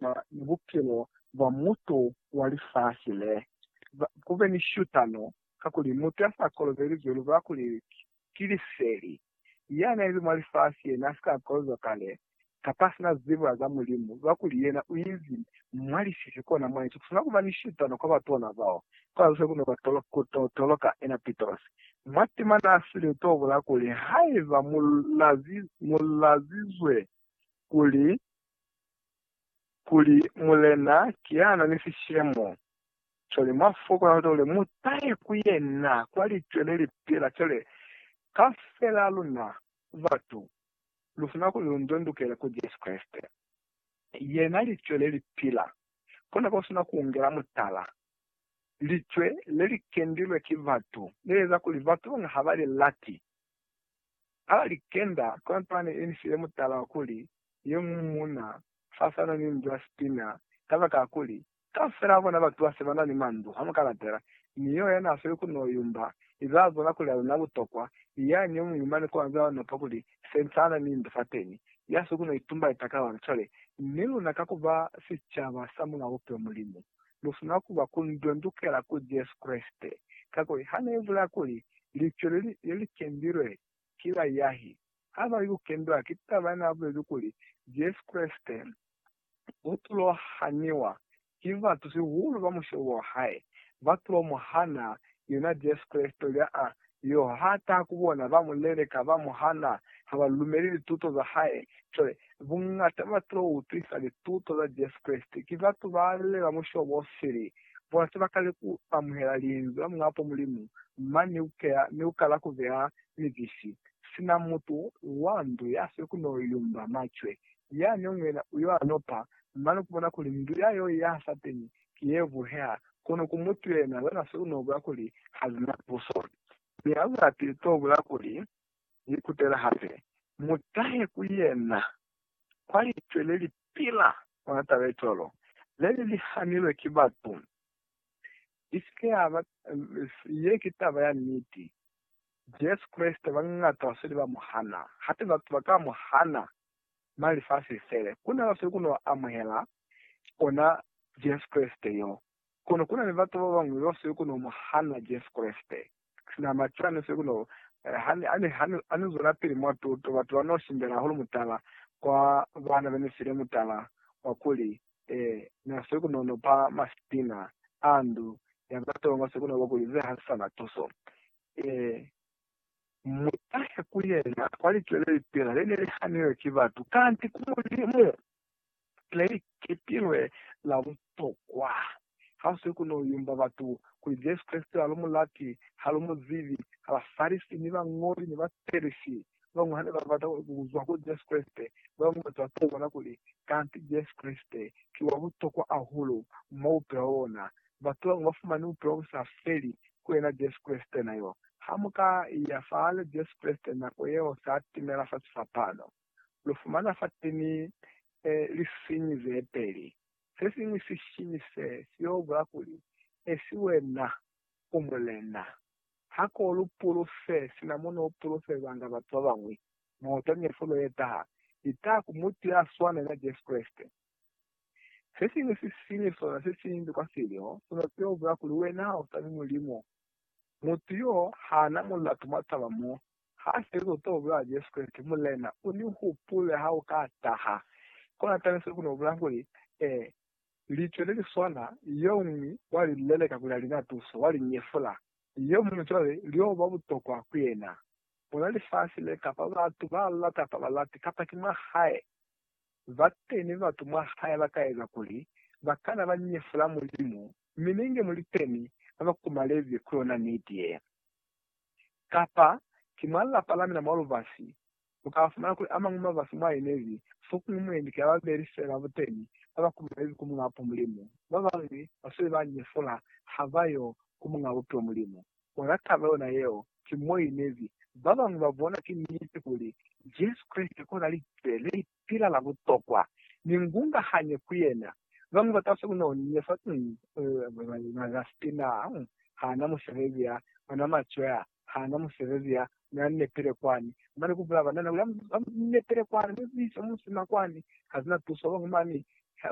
Ba ni bupilo bwa mutu wa lifasi le. Ku be ni shutano, kakuli mutu ya sa kolobeli zwi lubula kuli ki liseli. Ya na li mwa lifasi ye na si ka kolobezwa kale, kapa si na zibo ya za Mulimu, lubula kuli yena u inzi mwa lisisi kona mwa inzi. Ku swanela ku ba ni shutano kwa batu ona bao, kwa zose ku no ku toloka ena Pitrosi. Mwa tima na sile to bula kuli, Haiba mu lazizwe kuli, kuli Mulena kiana ni sishemo. Cwale mwa fokola hande kuli mu tahe ku Yena kwa Licwe le li pila. Cwale, kaufela luna, batu, lu funa kuli lu ndondukele ku Jesu Kreste. Yena Licwe le li pila. Kona ko sina ku ungela mutala. Licwe le li kendilwe ki batu, le eza kuli batu bañwi ha ba li lati. A li, Kenda kontwane ye ni file mutala wa kuli, Ye mu muuna, fasana ni ndu ya Spina, kabakakuli, kaufela ba bona batu ba se ba na ni mandu, ha mu ka latela, ni yo ya n'a sweli ku n'o yumba, i ba bona kuli a lu na butokwa, i yani yo muñwi mane kwa nzila wa nopa kuli, Sentana ni ndu fateni, ya si ku n'o itumba litaka lona. Cwale, ni luna ka ku ba sicaba sa Mulao Bupilo Mulimu, lu sina ku ba ku ndondokela ku Jesu Kreste, kakuli ha ne ibulea kuli, Licwe le li, le li kendilwe ki baiahi, ha ba li ku kendwa ki taba ye n'a bulezi kuli, Jesu Kreste u tulo haniwa ki batu sihulu ba mushobo wa hae, ba tulo mu hana yena Jesu Kreste lya a Leo ha taha ku bona, ba mu leleka, ba mu hana, ha ba lumeli lituto za hae. Cwale, buñata ba batu ba ba utwisa lituto za Jesu Kreste, ki batu ba lule ba mushobo o sili. Bona se ba kali ku amuhela Linzwi la Muñapo Mulimu, mane ni ku keya ni ku kala ku beya mibisi, sina mutu wa ndu ya sili ku n'o yumba macwe. Yani yo ñwina u yo anopa, mane ku bona kuli ndu ya yo i yaha sateñi, ki ye buheha, kono ku mutu yena wena se u n'o bula kuli ha li na tuso. Mi ha lu lati li t'o bula kuli li kutela hape. Mu tahe ku yena kwa licwe le li pila ona taba ye cwalo, le li li hanilwe ki batu. I si ke ya ba, ye ki taba ya niti. Jesu Kreste bañata ba sweli ba mu hana. Hape batu ba ka mu hana, mali fa si fele. Ku na ba sweli ku n'o amuhela ona Jesu Kreste yo. Kono ku na ni batu ba bañwi bao seli ku no mu hana Jesu Kreste. Sina macwani ni seli ku no, ha ni zwelapili mwa tuto, batu ba no shimbela hahulu mutala kwa baana be ni file mutala wa kuli, Ee, na seli ku no no pa masipina a ndu ya ba tonga seli ku no ba kuli ze ha si sa na tuso. Ee, mu tahe ku yena kwa licwe le lipila le ne li hanilwe ki batu, kanti ku Mulimu. Plate ki tilwe la butokwa. Ha si ku no yumba batu kuli Jesu Kreste ha lu mu lati, ha lu mu zibi. Ha ba Farisi ni bañoli ni ba Perisi ba bañwi ha ne ba bata ku zwa kuli Jesu Kreste, ba bañwi batu ba to bona kuli kanti Jesu Kreste ki wa butokwa hahulu mwa bupilo bwa bona. Batu ba bañwi ba fumani bupilo bu sa feli ku yena Jesu Kreste na yo. Ha mu ka iya fahali Jesu Kreste nako yeo sa timela fa sifapano. lu fumana fateni lisiñi zepeli. Sesiñwi sisiñi se, siyo bula kuli, Esi wena u mulena. Hako lu pulufe, sina mo no pulufelanga batu babañwi, moto ni fulo ye taha, i taha ku mutu ya swana ni na Jesu Kreste. Sesiñwi sisiñi sona se siñwi kwa silyo, sona siyo bula kuli wena ha usani Mulimu. Mutu yo, hana mulatu mwa taba mo Ha se lu to bula Jesu Kreste, Mulena, u ni hupule ha u ka taha. Kona tabe se ku no bula kuli, Ee, Litwe le li swana, yo ñwi wa li leleka kuli a li na tuso, wa li nyefula, yo muñwi cwale lyo ba butokwa ku yena. Bona lifasi le, kapa batu ba lata kapa ba lati, kapa ki mwa hae, ba teni ba batu mwa hae ba ka eza kuli ba kana ba nyefula Mulimu, mi ninge mu li teni ba ba kumalezi ku yona niti ye. kapa ki mwa lapa la mina mwa lubasi, lu ka fumana kuli a mañwi mabasi mwa inezi fokuñwi mwendi ki babeli fela buteni ba ba kumanezi ku Muñaa Bupo Mulimu. Ba bañwi ba sweli ba nyefula ha ba yo ku Muñaa Bupilo Mulimu. Ona taba yona yeo ki mo inezi. Ba bañwi ba bona ki niti kuli Jesu Kreste kona Likeleke. pila la butokwa, mi ngungahanye ku yena. Bañwi ba kasi ku no ni fa ni ba za siti na ha na musebezi ya ona macwe a ha na musebezi ya na nepile kwani. Mane ku bula banana kuli, Ha mu nepile kwani, mu zise musima kwani, ha zina tuso. Bañwi mani.